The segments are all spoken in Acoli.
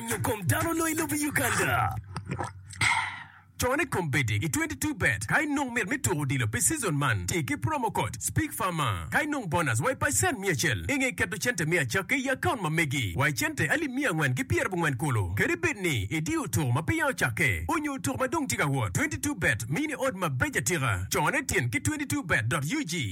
nyo kom dano nongo i lobo i Uganda. Cone kom bedi i 22 bet. Ka inongo mit me tuko odilo pi season man, ti ki promo code SPEAKFARMER. Ka inongo bonus wa i pacent miya acel, inge keto cente me acakke i account ma megi wa i cente alip miya angwen ki pyera bongwen kulu. Kadi bed ni idiyo tuko ma peya ocakke, onyo tuko ma dong tye ka wot, 22 bet mini odd mabeco atika. Cone tin ki 22 bet dot ug.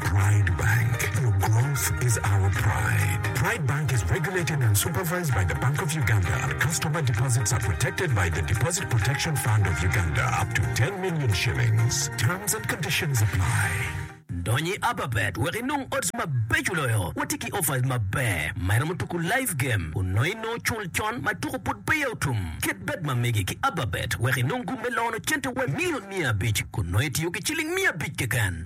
Pride Bank, your growth is our pride. Pride Bank is regulated and supervised by the Bank of Uganda. Customer deposits are protected by the Deposit Protection Fund of Uganda up to 10 million shillings. Terms and conditions apply. Dony i Ababet wek inong odds mabeco loyo. Watye ki offers maber ma iromo tuku live game onongo inongo cul con ma tuku pud peya otum. Ket bet ma megi ki Ababet wek inong gum me lono cente wai million miya abic kun nongo itiyo ki ciling miya abic keken.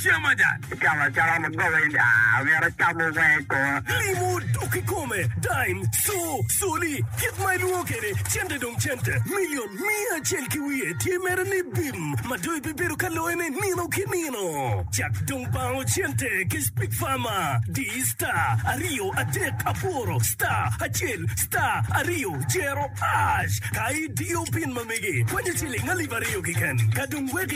Icamo acama mugobe in aa omyero icamo wee kor. Limo dok kikome, dime, co, coli, kit ma ilwongo kede cente dong cente, million, miya acel ki wiye tye mere ni bim ma dong ibibedo ka loye ne nino ki nino. Cak dong bango cente ki speak farmer, di star aryo adek aboro star acel star aryo cero ash ka idiyo pin ma megi kwanyo ciling alip aryo kiken ka dong wek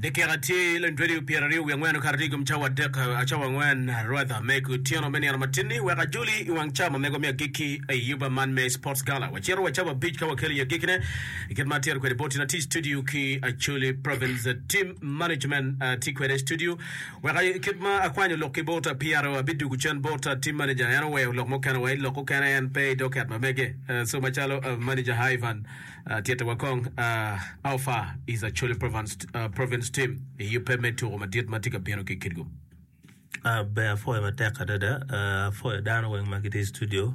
dakika tye luelweli pyeraryo wiye angwen okato tye ikom cawa adek cawa angwen rwadha me kutyeno me nino matinni wek ajoli iwang cawa mamego me agikki i yuba man me sports gala wacito wa cawa abic ka wakelo i agikkine kit ma atito kwede boti na tye i studio ki acholi province team management tye kwede i studio Wek i kit ma akwanyo lok ki bota pire abidugu cen bota team manager en oweyo lok mukene wa i lok okene en pe i docket ma mege so macalo manager Ivan tyete wa kong how far is Acholi province team i yubbe me tuko madit ma tye ka bino ki Kitgum. Ber apwoyo matek adada apwoyo dano weng ma gitye i studio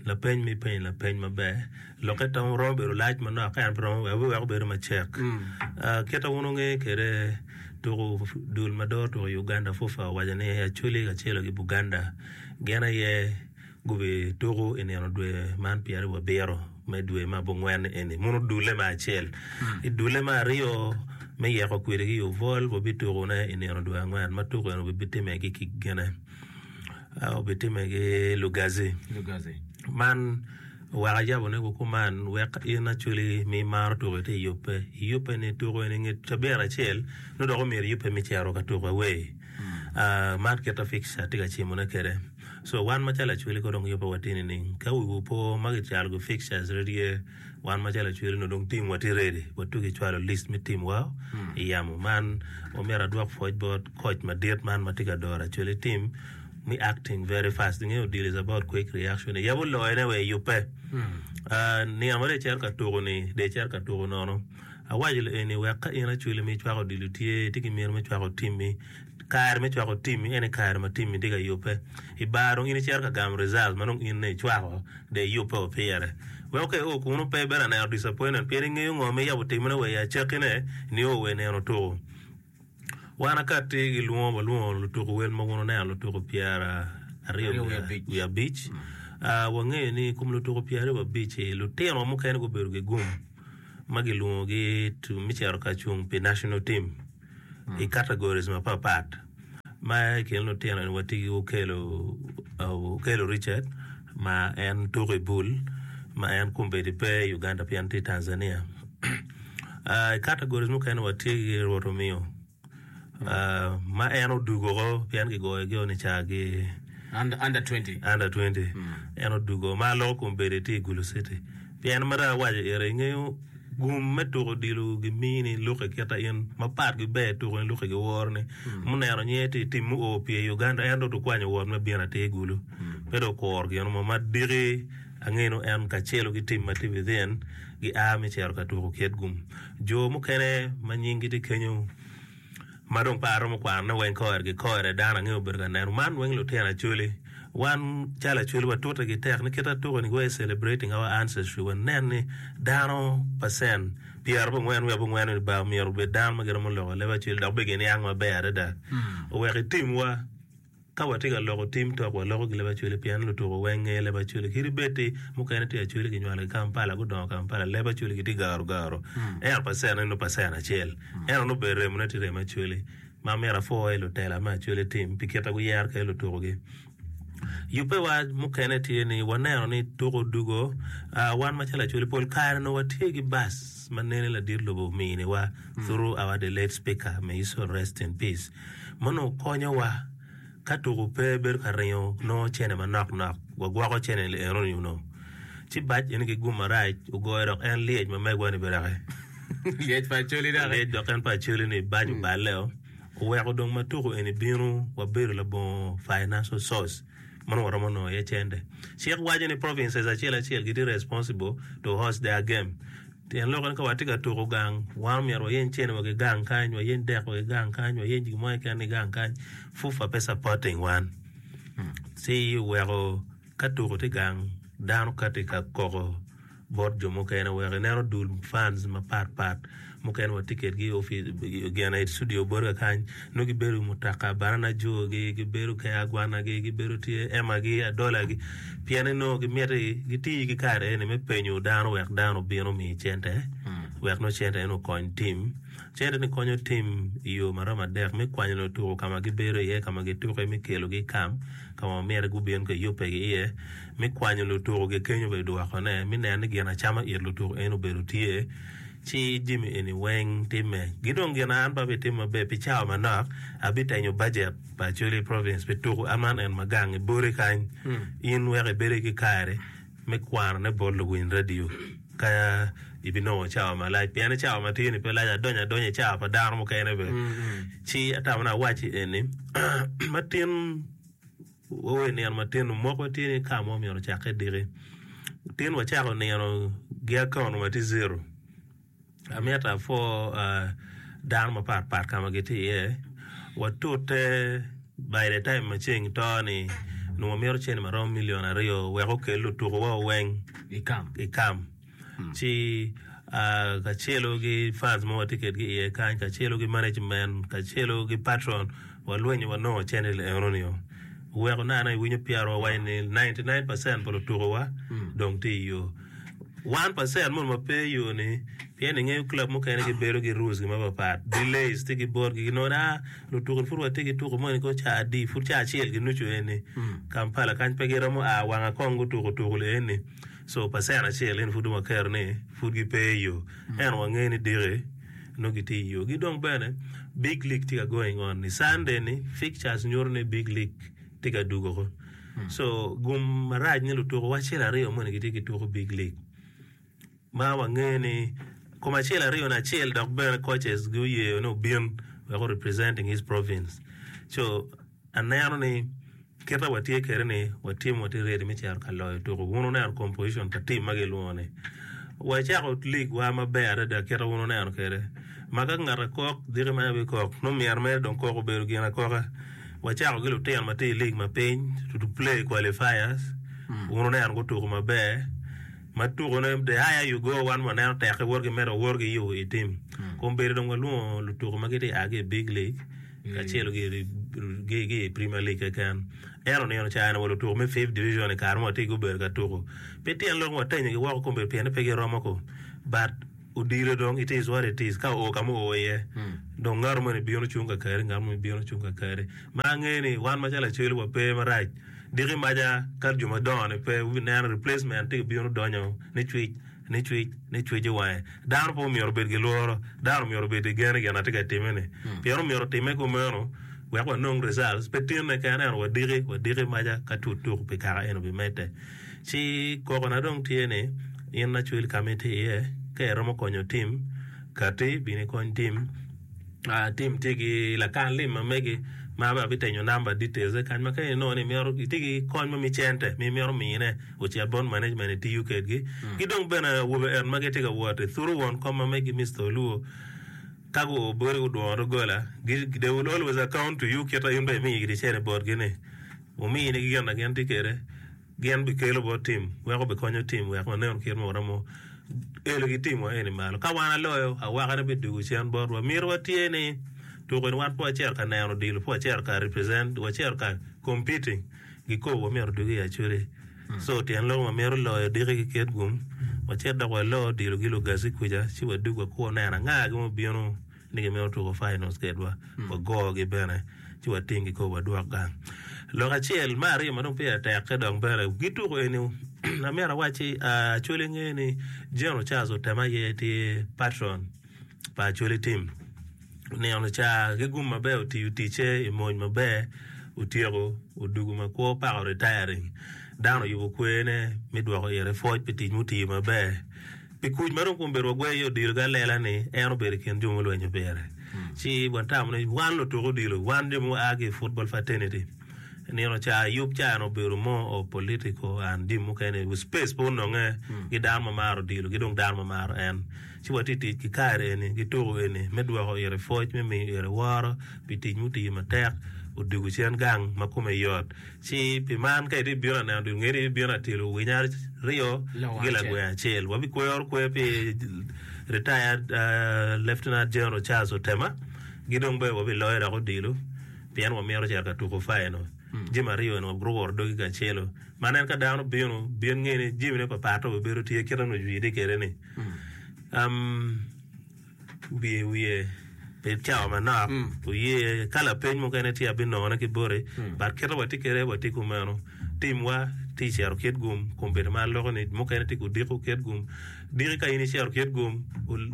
lapeny ma ipenyo lapeny maber. Lokke tong romo bedo lac manok ka en pe romo weko weko bedo macek. Kit ma wun wunge kede tuku dul ma doro tuku i Uganda FUFA owaco ni Acholi kacelo ki Buganda gin aye gubi tuku i nino dwe man pyeraryo wa biro me dwe ma abongwen eni muno dule ma acel. I dule ma aryo me yeko kwidi ki Uvol wabi tuku ne i nino dwe angwen ma tuku eni obi time ki ki gine obi time ki Lugazi. Lugazi. Man Wek ajabone ku kuman, wek in acwali ma imaro tuko ite yubbe, iyubbe ni tuko eni nge cabit acel nongo dok omyero iyubbe me cito ka tuko away. Ah, man kit ma picture tye ka cimone kwede. So wan macalo acwali kong dong yubbe watye nining? Ka wiwu po ma kicwalo ki pictures redi aye, wan macalo acwali nongo dong timwa tye ready wa tuki cwalo list me timwa i yamo man. Omyero adwok pwoc bot koc madit man ma tye ka doro acwali tim. ni acting very fast nge odilo is about quick reaction yabo loyo ne wee yubbe niang wede icito ka tuku ni de icito ka tuku nono awaco lo eni wek ka in acwali ma icwako odilo tye itye ki miti me cwako team mi kare me cwako team mi ene kare ma team mi tye ka yubbe ibar dong in icito ka gamo result ma dong in ne icwako de iyubbe o pire weko ka i o kunu pe ibino aneno disappointed pien ingeyo ngo ma iyabo timone wee i acaki ne ni o wee neno tuku. Wan akati gilwongo walwongo lutuku wel mogo oneno lutuku pyeraryo wiye abic wangeyo ni kom lutuku pyeraryo wiye abic ci lutino wa mukene gubedo gigum ma gilwongogi me cito ka cung pi national team i categories mapat pat ma i kin lutino ni watye ki Okello Richard ma en tuku i bul ma en kombeddi pe i Uganda pien tye i Tanzania. I categories mukene watye ki Rwot omiyo ma en odwogo woko pien kigoyogi ni ca ki Under 20. under 20 en odwogo ma loko kom bedo tye i Gulu City pien mito awaco iri ingeyo gum me tuko odilo gimini luki kita in mapat giber tuko ni luki giworo ni muneno nyer tye i tim mu o pye i Uganda en dong dukwanyo wot me bino atir i Gulu pe dong okuro gin mo ma diki Angenu en kacelu ki tim ma tye within gia me cito ka tuko kit gum. Jo mukene ma nyinggi tye kenyo ma dong pe aromo kwanone weng kore gi kore dano ange obedo ka neno. Man weng lutino Acholi. Wan calo Acholi watute gi tek ni kit atuko ni we're celebrating our ancestry when nen ni dano percent pyera bo ngwen wiya bo ngwen ni ba omyero obed dano ma giromo loko leb Acholi dok be giniang maber adada owek itimwa Ka watye ka loko tim tok waloko ki Leb-Acholi pien lutuko weng ngeyo Leb-Acholi. Kit ibed-ti, mukene tye Acholi ginywalo i Kampala, gudongo Kampala. Leb-Acholi gitye garu garu. Ento pacentne nongo pacent acel. Ento nongo obedo remone tye remo Acholi. Ma myero apwo aye lutela me Acholi tim pi kit ma guyero kwede lutukogi. Yubbewa mukene tye ni waneno ni tuko odwogo. Ah, wan macalo Acholi pol kare nongo watye ki bac ma nene ladit lobo ominiwa through our the late Speaker, may his soul rest in peace. ma onongo konyowa ka tuku pe bedo ka ringo nongo cene manok nok wagwoko cene ni enoni onongo ci bac eni ki gum marac ogoyo dok en lyec ma megwa ni bene ki lyec pa acoli dok lyec dok en pa acoli ni bac oballe o oweko dong ma tuku eni bino wabedo labongo financial source ma onongo waromo nongo iye cente cik waco ni provinces acel acel gitye responsible to host their game Pien lok en ka watye ka tuko gang wan omyero wayeny cene wa ki gang kany wayeny dek wa ki gang kany wayeny gin mo keken ki gang kany fufa pe supporting wan ci weko ka tuko tye gang dano kati ka koko bot jo mukene weko ineno dul fans mapat pat mukene watye kedgi i opic gin aye i studio botwa kany nongo gibedo i mutoka baranajogi gibedo kede agwanagi gibedo tye emagi adolagi pien ni nongo gimiti gitiyo ki kare eni me penyo dano wek dano obin omi cente wek nongo cente eni okony tim cente ni konyo tim i yo ma romo adek me kwanyo lutuku ka ma gibedo iye ka ma gituku iye me kelogi i kam ka ma myero gubin ka yubbe ki iye me kwanyo lutuku kikenyo bene dwokone me neno ni gin acama it lutuku eni obedo tye Ci jami eni weng timme. Gi dong gin an pe abitimo maber pi cawa manok, abitenyo bajet pa Acholi Province pi tuku aman en ma gang i boti kany, in wek ibedo ki kare me kwanone bot luwiny radio ka ibinongo cawa malac. Pien ni cawa matye ni pe lac, adonyo adonya i cawa pa dano mukene bene. Ci atamo ni awacci eni, matin. Wawe nino matino moko tye ni ka mo myero ocak ki diki. Tin wacako nino gi account ma tye zero. Amyero apwo dano mapat pat ka ma gitye iye. Watute by the time ma ceng to ni nongo myero cente maromo million aryo wek okel lutuku wa weng i kam. ci kacelu ki fans ma watye kwedgi iye kany kacelu ki management kacelu ki patron walwenyo wanongo channel enoni o weko nano iwinyo pyero wawaco ni 99 percent pa lutukuwa dong tye iyo 1 percent moni ma pe iyo ni pien ingeyo club mukene gibedo ki rules gi mapapat delays tye ki botgi ginongo ni ah lutuku-ni pud watye ki tuku moni kong caa adi pud caa acel ginucu eni Kampala kany pe giromo a wanga kong gutuku tuku-li eni So pacen acel eni pud dong waketo ni pud gipe i yo. Ento wangeyo ni diki nongo gitye i yo. Ki dong bene Big League tye ka going on. I Sunday ni fixtures nyuto ni Big League tye ka dugo ko. So gum marac ni lutuku wacel aryo moni gitye ki tuku Big League. Ma wangeyo ni kom acel aryo ni acel dok bene coaches gi oyeyo ni obin wek o representing his province. So Aneno ni kite watye kwede ni watye watye ready me cito ka loyo tuku. Wun wuneno composition pa team ma gilwongo ni. Wacako league wa maber adada kite wun wuneno kwede. Ma ka ngat akok diki ma abe kok nongo myero mere dong kok obedo gin akoka. Wacako ki lutino ma tye i league ma piny to play qualifiers. Wun wuneno gutuku maber. Ma tuku ne the higher you go wan waneno teke wot gimedo wor gi yo i team. Kong bedo dong walwongo lutuku ma gitye a ki i big league. kacel ki i Premier League keken. En onino ca en wa lutuku me Fifth Division i kare ma watye gubedo ka tuku. Pe tyen lok watenyogi woko kombedo pien ni pe giromo ko. But odilo dong it is what it is. Ka oo ka ma oo iye, dong ngato moni bino cung kakari, ngat moni bino cung kakari. Ma angeyo ni wan macalo Acholi wape marac. Diki maca ka jo madongo-ni pe, wubineno replacement tye ka bino donyo nicwic. Nicwic, nicwic i wange, dano pe omyero obed ki lworo. Dano omyero obed ki gen i gin a tye ka timme-ni, pien omyero otimme kumeno wek wanong results, pe tinne kene ento wadiki, wadiki maca ka tut tuku pi kaka en obimedde. Ci kokona dong tye ni, in lacwil ka ma itye iye, ka iromo konyo tim, katti bino ikony tim. Ah, Tim tye ki lakan lim ma mege ma bene abitenyo number details ne kany ma ka inongo ni imito itye ki kony ma mi cente ma imito mine ocit bot management itiyo kedgi. Ki dong bene awobe en ma gitye ka wot i thuru won kom ma megi Mister Oluo ka gu bodi gudwongo doggola gi they will always account to you kita in bene imi gidi cene botgi ni wumi in gi gin na gin tye kede. Gin bikelo bot tim weko bikonyo tim wek wanenu kit ma waromo elo ki timwa eni malo. Ka wan aloyo, awakane bidugo cen botwa. Mito wa tye ni tuko eni wan pe wacito ka neno odilo, pe wacito ka represent, wacito ka competing gi ko wamito dugo i Acholi. So tyen lok ma mito loyo diki ki kit gum, wacit dok walo odilo gi Lugazi kuca ci wadug wakwo neno anga gin mubino. ni gimito tuko finals kedwa, wagogi bene ci wating kikopo pa dwok gang. Lok acel me aryo ma dong pire tekke dok bene gituko eni amyero awacci Acholi nge ni General Charles Otem aye tye patron pa Acholi team. Onino ca ki gum maber otiyo ticce i mony maber otyeko odugo ma kwo pako retiring. Dano oyubo kwene me dwoko ite pwoc pi tic mutiyo maber I kuc ma dong kombeddi wagweyo iye odilo ki alela ni en obedo i kin jo mulwenyo pire, ci watamo ni wan lutuk odilo, wan jo ma waa ki i football fraternity, nino ca yub ca en obedo more of political and jami mukene, space pe ononge ki dano ma maro odilo ki dong dano ma maro en. Ci watye ka tic ki kare eni ki tuko eni me dwoko ite pwoc me miyo ite woro pi tic mutiyo matek odwogo cen gang ma kome yot. Ci pi man, ka ibibino ka neno dul ngeri, ibibino ka tilo winyo aryo ki gilagwe acel. Wabikwero kwer pi Retired Lieutenant General Charles Otema, ki dong bene wabiloyo dok odilo pien wamito cito ka tuko faino. Jami aryo eni wabitwero woro dogi kacelo. Ma nen ka dano bino, bin nge ni jamine papatte obibedo tye kit ma nongo ocwide kwede-ni. Um. Bi i wiye pi cawa manok, wuye ka lapeny mukene tye abinongone ki boti, but kite watye kwede watye kumeno. Timwa tye i cito kit gum kun bedo ma aloko ni mukene tye ku diko kit gum. Diki ka in icito kit gum,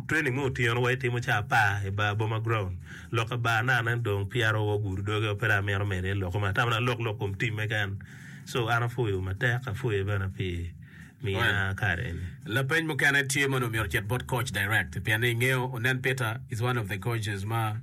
training me otyeno wa itimo ca apar i bar boma ground. Lok ka bar na nen dong peya ro wa ogudo doge wa pe dong amito medo iye lok kome atamo ni alok lok kom team me kene. So an apwoyo matek apwoyo bene pi Lapeny mukene tye ma onongo myero ocit bot coach direct pien ni ingeyo onen Peter is one of the coaches ma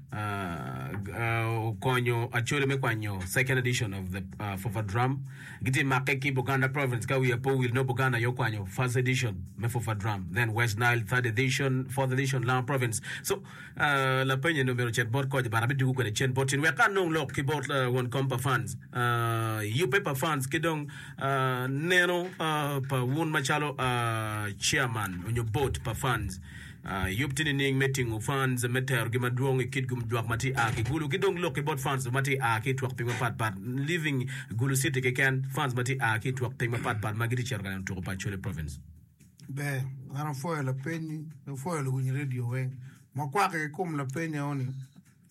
okonyo Acholi me kwanyo second edition of the Fufa Drum gitye make ki Buganda province ka wiya pe owil nongo Buganda aye okwanyo first edition me Fufa Drum then West Nile third edition fourth edition Langa province so Lapeny eni omyero ocit bot koc but abidwogo kwede cen bot cen wek ka anong lok ki bot won kom pa funds, yubbe pa funds ki dong neno pa wun macalo chairman onyo board pa funds. Yub tye nining me tingo funds me terogi madwong ikit gum jwak ma tye aa ki gulu ki dong lok ki bot funds ma tye aa ki itwok piny mapat pat leaving gulu city keken funds ma tye aa ki itwok piny mapat pat ma gitye cito ka neno tuko pa Acholi province. Ber, an apwoyo lapeny-nyi, apwoyo luwiny redio weng. Makwakke ki kom lapeny eno ni,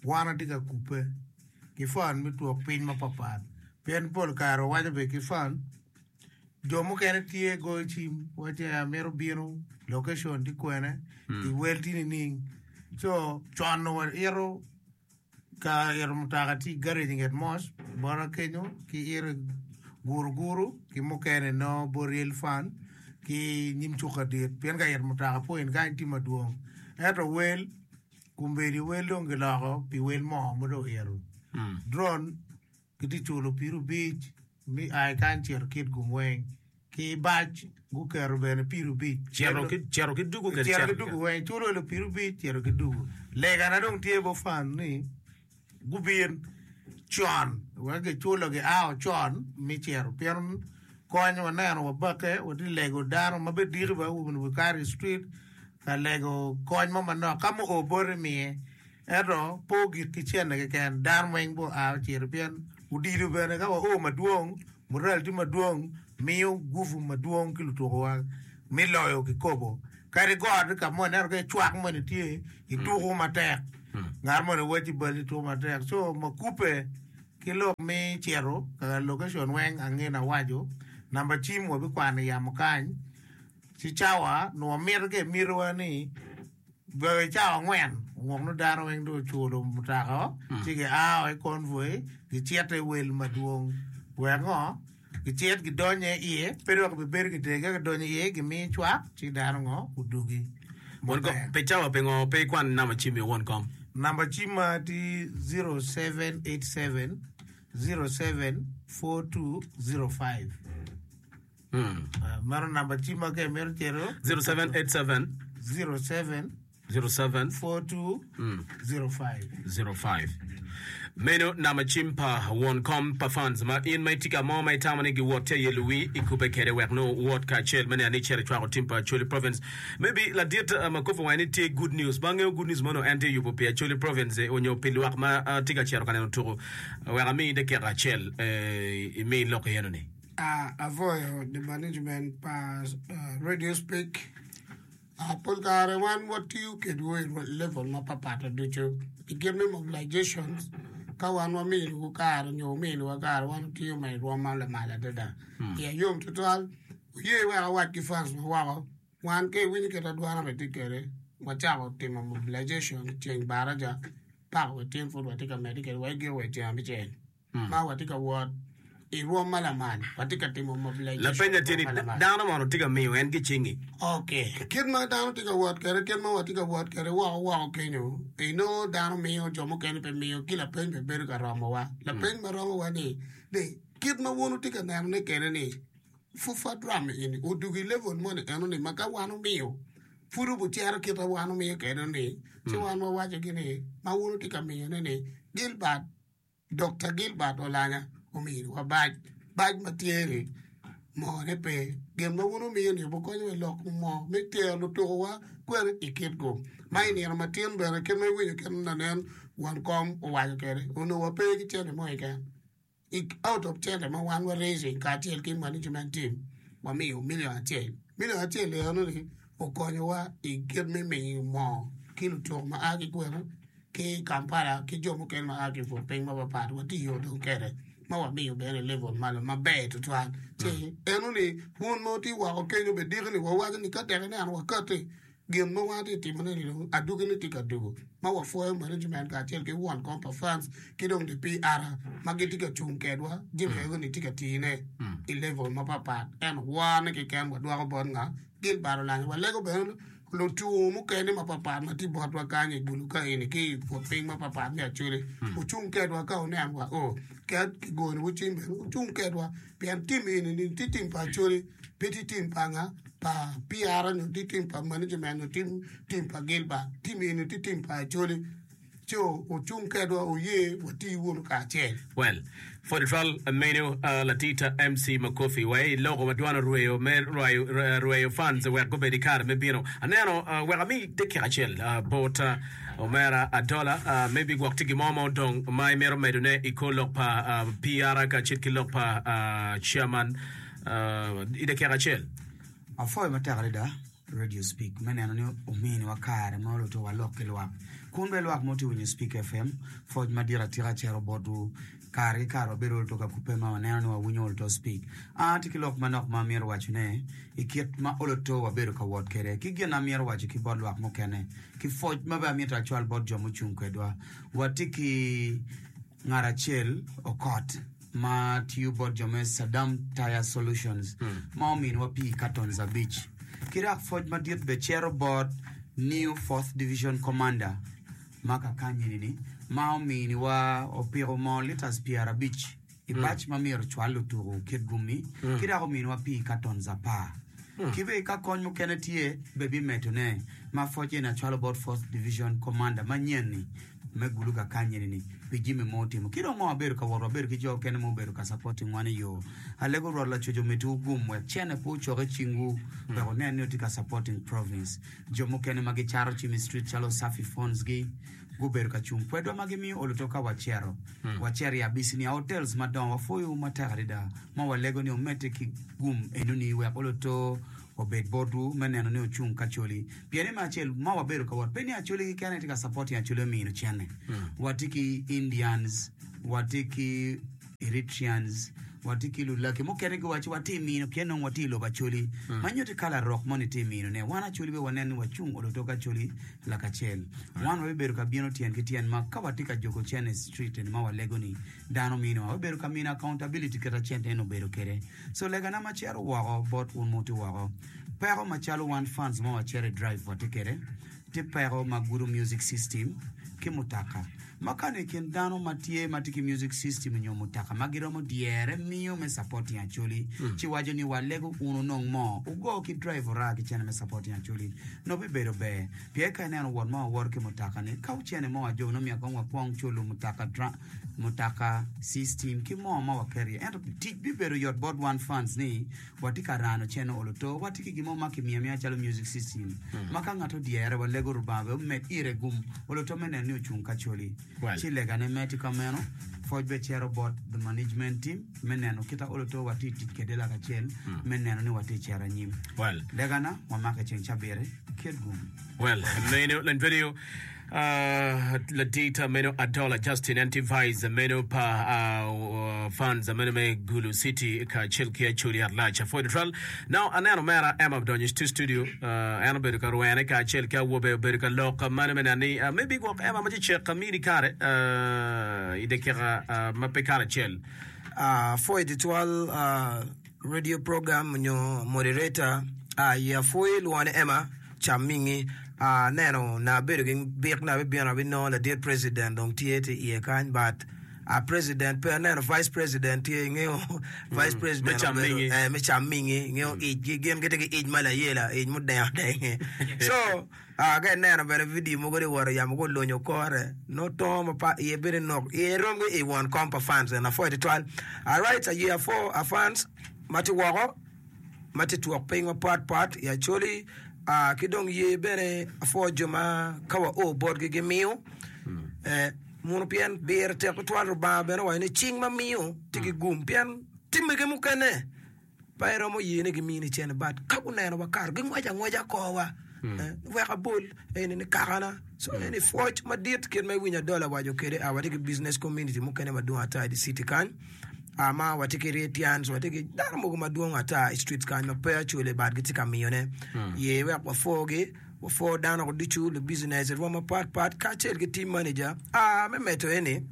wan atye ka kubbe ki fan me twok piny mapatpat. Pien pol kare wawaco bene ki fan, jo mukene tye goyo cim waco ni amito bino, location tye kwene, iwel tye nining. Co con wa ito. Ka ito mutoka tye i garage i nget mos bota kenyo ki ito guru guru ki mukene nongo bot real fun ki nyim cuk adit pien ka ito mutoka pol in kany tye madwong ento wel kombeddi wel dong giloko pi wel mo ma dong oito drone Gitye culo pii rubic me ai kany cito kit gum weng ki i bac guketo bene pii rubic cito ki dugu kede cito ki dugu weng culo elo pii rubic cito ki dugu lega na dong tye bofan ni gubin con wek giculo gi ao con me cito pien kony wa neno wa bake wa tye lego dano ma bene diki bene wa bino ka i street ka lego kony mo manok ka mu o boti miye Ento pe ogik ki cente keken, dano weng bene oa ocito pien odilo bene ka wao madwong, mural tye madwong miyo gupu madwong ki lutukuwa me loyo kikopo. Kadi got ka mo ineno ka cwak moni tye ituku matek, ngat moni wacci bal ituku matek co makupe ki lok me cito ka location weng ange na waco namba cim wabikwano yamo kany ci cawa nwa mito ka imitiwa ni Gweng i cawa angwen wok nongo dano weng dong oculo mutaka o ci gia o i convoy gicito i wel madwong wek ngo gicit gidonye iye pe dong kibibedo ki tenge gidonyo iye gimiyo cwak ci dano ngo gudugi maber. Pe cawa pingo pe ikwan namba cimi won kom? Namba cimma tye 0787 07 4205. Meno namba cimma ka imito cito. 0787 07 07 42 05. 05 meno namba cim pa won kom pa fans ma in ma itye ka mo ma itamo ni giwot tye aye luwi ikube kede wek nongo wot kacel me neno ni cere cwako tim pa acholi province maybe ladit uh, ma kopo wange ni tye good news ma angeyo good news mono en tye yubo pi acholi province eh, onyo pi lwak ma ah, tye ka cito ka neno tuku wek ami dakika acel eh, imi lok iyeno ni Avoyo the management pa radio speak pol kare wan watiyo kedwu i level mapat pat ducu i kit me mobilization ka wan wamiyowu kare nyo wumiyowa kare wan watiyo ma i rwom ma lamal adada pien yom tutwal wuye wek awac ki fans ma woko wan ka iwinyo kit adwarna bene tye kwede wacako timo mobilization ceng baraca pak wa tyen pud watye ka medde kwede wa i giko wa i tyeng abicel. ma watye ka wot i rwom ma lamal, watye ka timo mobilization i Lapeny-na tye ni, rwom ma lamal. Dano mono tye ka miyo en gicingi? Ok. Kit ma dano tye ka wot kwede, kit ma watye ka wot kwede woko woko kenyo, inongo dano miyo, jo mukene pe miyo, ki lapeny pe bedo ka romowa. Lapeny ma romowa-ni, ni, kit ma wun wutye ka nenone kwede-ni, Fufa Drum eni odwogo i level moni enoni ma ka wan wumiyo, pud obucero kit ma wan wumiyo kwede-ni, ci wan wawacogi ni, ma wun wutye ka miyone-ni, Gilbert, Dokta Gilbert Olanya omiyo wa bac, bac ma tye ni moo ne pe. Gin ma wun wumiyo ni wukonyo me lok moo me tero lutuku wa kwene i kit gu ma i nino ma tin bene kit ma iwinyo kit ma lanen won kom owaco kwede onongo wa pe ki cente mo keken i out of cente ma wan wa raising kacel ki management team wa miyo million acel, million acel eno ni okonyo wa i kit me miyo moo ki lutuku ma a ki kwena. ki i Kampala ki jo mukene ma a ki i pwod piny mapapat watiyo dong kede ma wamiyo bene level malo maber tutwal ci eno ni pwony mo ti woko kenyo be diki ni wawaco ni ka tek ineno wakati gin mo ma ati timo ne ni dong aduki ni ti ka duku ma wapwoyo management kacel ki won kom pa fans ki dong di PR ma giti ka cung kedwa jami ego ni ti ka tii ne i level mapapat eno wone keken wadwoko bot nga gin bad olanya walego bene Lutwo mukene mapatpat ma tye botwa kany i dul ka eni ki i but piny mapatpat me Acholi wucung kedwa ka wuneno wa o ket ki goni wu cing bene wucung kedwa pien tim eni ni tye tim pa Acholi pe tye tim pa nga pa PR nyo tye tim pa management nyo tye tim pa Gilbert tim eni tye tim pa Acholi Co ocung kedwa oye wati wunu kacel. Well, for the trial menu, uh, Latita MC Makofi, wa i loko ma dwan orweyo me rwayo, uh, rweyo fans wek gubed i kare me bino. Aneno, uh, wek ami dakika acel, uh, bot, uh, omera Adola, uh, maybe gwok tye gin mo ma odong ma imito medone i kor lok pa, uh, PR kacel ki lok pa, uh, Chairman, uh, i dakika acel. Apwoyo matek adada. Radio Speak me neno ni ominiwa kare ma olute walok ki lwak. Kun be lwak mo tye winyo Speak FM, foc madit atika cero botwu. Kare ki kare wabedo olto ka kubbe ma waneno ni wawinyo olto Speak. An atye ki lok manok ma amyero wacone i kit ma olto wabedo ka wot kwede, ki gin amyero waco ki bot lwak mukene, ki foc ma be amyero acwal bot jo mucung kwedwa. Watye ki. Ngat acel, Okot, ma tiyo bot jo me Saddam Tire Solutions ma ominiwa pii katons abic. Ki dok pwoc madit bene cito bot New Fourth Division Commander ma kakanyini-ni ma ominiwa opiko moo litas pyerabic i bac ma myero ocwal lutuku kit gummi ki dok ominiwa pii katons apar. Ki bene ka kony mukene tye bene bimedone ma pwoc eni acwalo bot Fourth Division Commander manyen-ni. me gulu kakanyeni ni pi jimi mo otimo ki dong ngo abedo ka wot wabedo ki jo okene ma obedo ka sapoti ngwa ni yoo alego rwot lacoc omiti wu gum wek cene pe ocok i cing wu wek wunen ni wutye ka sapoting province jo mukene ma gi cato cim i street calo usafi phones gi gubedo ka cung kwedwa ma gi miyo olu to ka wacero wacero i abici nia hotels madongo wapwoyo wu matek adada ma walego ni omete ki gum enuni wek olu to Wabed botwu me neno ni ocung ki Acholi, pien ni me acel ma wabedo ka wot pe ni Acholi keken aye tye ka supporting Acholi omino cene. Watye ki Indians, watye ki Eritreans, watye ki Lulaki mukene giwaco ci watye mino pien nongo watye i lobo Acholi ma nyuto i kala rok moni tye mino ne. Wan Acholi be wanen ni wacung olo tok Acholi lakacel. Wan wabibedo ka bino tyen ki tyen ma ka watye ka jogo cene street eni ma walego ni dano minowa, wabibedo ka mino accountability kit ma cente eni obedo kwede. So legana ma cito woko bot un muti woko, peko ma calo wan fans ma wacito i drive watye kede ti peko ma gudo music system ki mutaka ma kani ikin dano ma tye ma ti ki music system onyo mutaka ma giromo dyere miyo me supporting acholi ci waco ni wa lego un onong mo ugo ki drive ora ki cene me supporting acholi no bi bedo ber piye ka ineno wot ma wawoto ki mutaka ni ka ocene mo ajog no myek kong wa kwong culu mutaka mutoka, system ki mo ma waketo iye ento tic bibedo yot bot wan fans ni watye ka rano channel olo to watye ki gin mo ma kimiyo amiya calo music system ma ka ngat odyere walego Lubanga bene omed ire gum olo to me neno ni ocung ki Acholi ci legane mere tye ka meno pwoc bene cito bot the management team me neno kita olo to watye ka tic kwede lakacel me neno ni watye ka cito anyim legana wamake ceng cabit kit gum. Uh, ladita meno Adola Justin en tye vice meno pa uh, fans meno me Gulu City kacel ki Acholi Atlac Ford Tral. Now aneno mera Emma odonyo i studio, uh, en obedo ka rwene kacel ki awobe obedo ka lok mano me nani. Uh, maybe gwok Emma ma cecek ka mini kare uh, i dakika uh, ma pe kare acel. Uh, Ford Tral uh, Radio program nyo moderator a i apwoyi lwongo ni Emma Chamingi a neno na abedo ki bik na abibino abinongo ladit president dong tye tye iye kany but a president pe aneno vice president tye ingeyo vice president me obedo- Chamingi. eh, me Chamingi ingeyo icgi gin gitye ki ic ma layela ic mudengo denge so Aa ka ineno bene vidio mogo ni woro yamo gulunyo kore, nongo tongo ma pa iye bedo nok iye rom ki i won kom pa fans eni apwoyo tutwal. Alright aye apwo a fans ma tye woko ma tye twok piny mapat pat i Acholi aa ki dong ye bene apwo jo ma ka wa o botgi gimiyo eh, muno pien biro tek tutwal Rubanga bene owaco ni cing ma miyo tye ki gum pien timmege mukene pe iromo ye ni gimini cene but ka guneno wakato gingwaco angwaca korwa eh, wek abol eni ni kakana so eni pwoc madit kit ma iwinyo adol awaco kede ah, watye ki business community mukene madwong ata i di city kany ah, ma watye ki retians watye ki dano mogo madwong ata i street kany ma pe acwale but gitye ka miyone ye wek wapwogi wapwo dano ducu lubicinec irwo mapatpat kacel ki team manager ah, me medo eni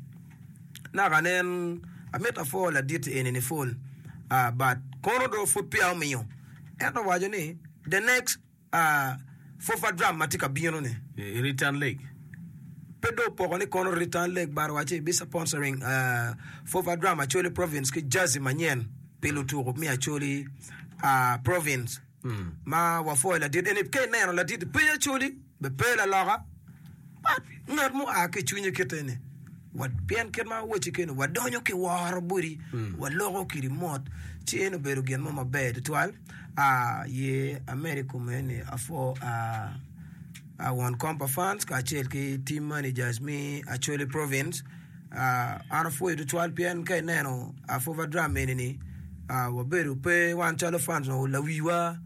Naka nen, amito apwo laditi eni nipwol, ah, but kono do pwod peya omiyo. Ento owaco ni, the next, ah, Fofa drum ma tye ka bino ni, i Return Leg, pe do opoko ni kono Return Leg but owaco ni bi sponsoring, ah, Fofa drum Acholi Province ki jersey manyen pi lutuku me Acholi, ah, Province. Ma wapwoyo ladit eni, ka ineno ladit peya Acholi. Bed pe laloka, mat ngat ma oa ki i cwinyi kite ni, pien kit ma wacci keni wadonyo ki woro boti, waloko kidi mot, ci eno obedo gin mo maber tutwal. Aye amede kome ni apwo won kom pa fans kacel ki team managers me Acholi Province. An apwoyi tutwal pien ka ineno Afoba Drum eni ni wabedo pe wan calo fans wa lawiwa.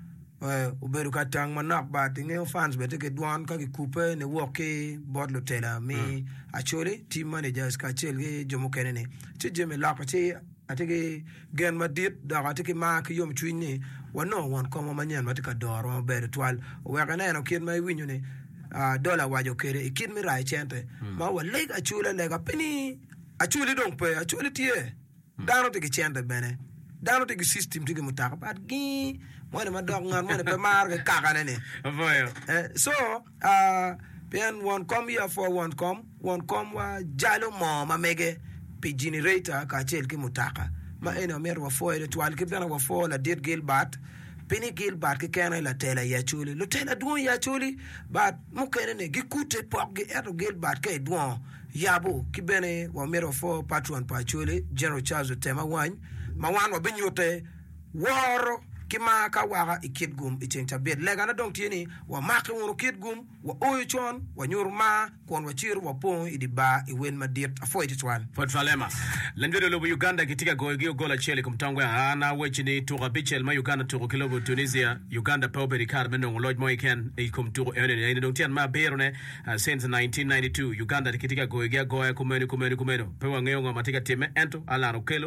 obedo ka tang manok bat ingeyo fans bene tye ki dwon ka kikubbe niwok ki bot lutela mi Acholi, team managers kacel ki jo mukene ni ci Jimmy lok ci atye ki gen madit dok atye ki mar ki yom cwiny ni wanongo won komwa manyen ma tye ka dorowa maber tutwal oweko ineno kit ma iwinyo ni Dola waco kwede i kit me rayo cente ma waleg Acholi alega pe ni Acholi dong pe Acholi tye. Dano tye ki cente bene. Dano tye ki system, tye ki mutaka but gii moni madok ngat moni pe maro ki kakane ni. Aboyo. Eh, so ah, pien won kom ya for won kom, won komwa jalo moo ma mege pi generator kacel ki mutaka. Ma eni omyero wafoye tutwal kit bene wafo ladit Gilbert pi ni Gilbert kekene latela i Acholi. Lutela dwong i Acholi but mukene ni gikute pokgi ento Gilbert ka idwongo Yabu ki bene wamito wapwo patron pa Acholi, General Charles Otema Wany, ma wan wabinyute woro ki mar ka waka i kit gum i ceng cabit. Legane dong tye ni wamaki wunu kit gum, waoyo con, wanyutu mar, kun wacito wapongo i di bar i wel madit. Apwoyo tutwal. Port Falema. Lanyode lobo Uganda gitye ka goyo gi ogol acel i kom tong gwe aa na weci ni tuko abicel ma Uganda tuko ki lobo Tunisia, Uganda pe obedo i kare me nongo loc mo kiken i kom tuko enoni, eni dong tyen me abiro ne. Since nineteen ninety two, Uganda kitye ka goyogi agoya kumeno kumeno kumeno. Pe wangeyo ngo ma tye ka timme, ento Allan Okello,